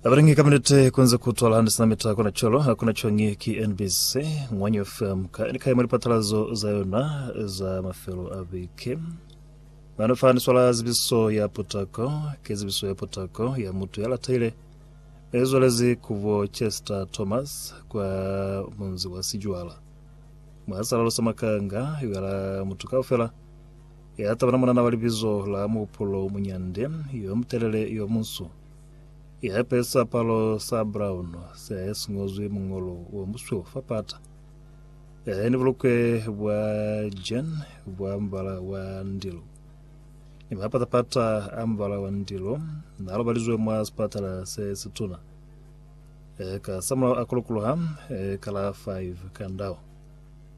Abaringi ka minute kunze kutwala handi sina mita kuna cholo hakuna chongi ki NBC Ngwanyo FM ka ni kaimo lipatalazo za yona za mafelo a bike nano fa ni swala zibiso ya potako ke zibiso ya potako ya mutu ya lataile e zwalezi kubo Chester Thomas kwa munzi wa Sijwala mwasalalo sa makanga yala mutu kaufela Ya tabana munana wa libizo la Muhupulo Muñande, yo mutelele, yo munsu, ya ipezi siapalo sa brown se si ñozwi muñolo o musweu fa pata, ya eni bulukwe bwa jean bwa mubala wa ndilo, ni mapata-pata a mubala wa ndilo, na lobalizwe mwa sipatala se situna. Ka samulaho a kulukuluha ka la 5 ka ndau.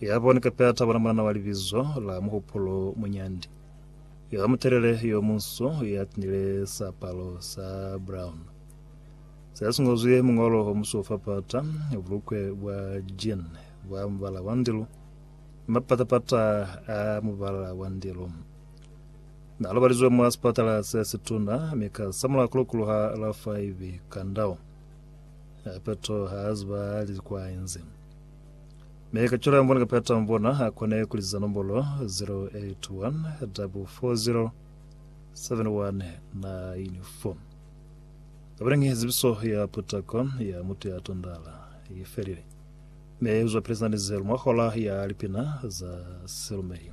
Ya boni kape a tabula mulana wa libizo la Muhupulo Munyandi yo mutelele yo munsu ya tinile siapalo sa brown se si ngozwi muñolo o musu fa pata, bulukwe bwa jean bwa mubala wa ndilu ni mapatapata a mubala wa ndilu. Na lobalizwe mwa sipatala se situna mi ka samula kulukulu ha la 5 kandao. Hape to ha ziba li kwa inzi. Mi ka cwalo yambona kapeta yambona akone kuliza nombolo 0814407194 kabalengi zibiso ya putako ya mutu ya tondala ifelile me uzwa pele zina ni zelu mwa hola ya lipina za silumeli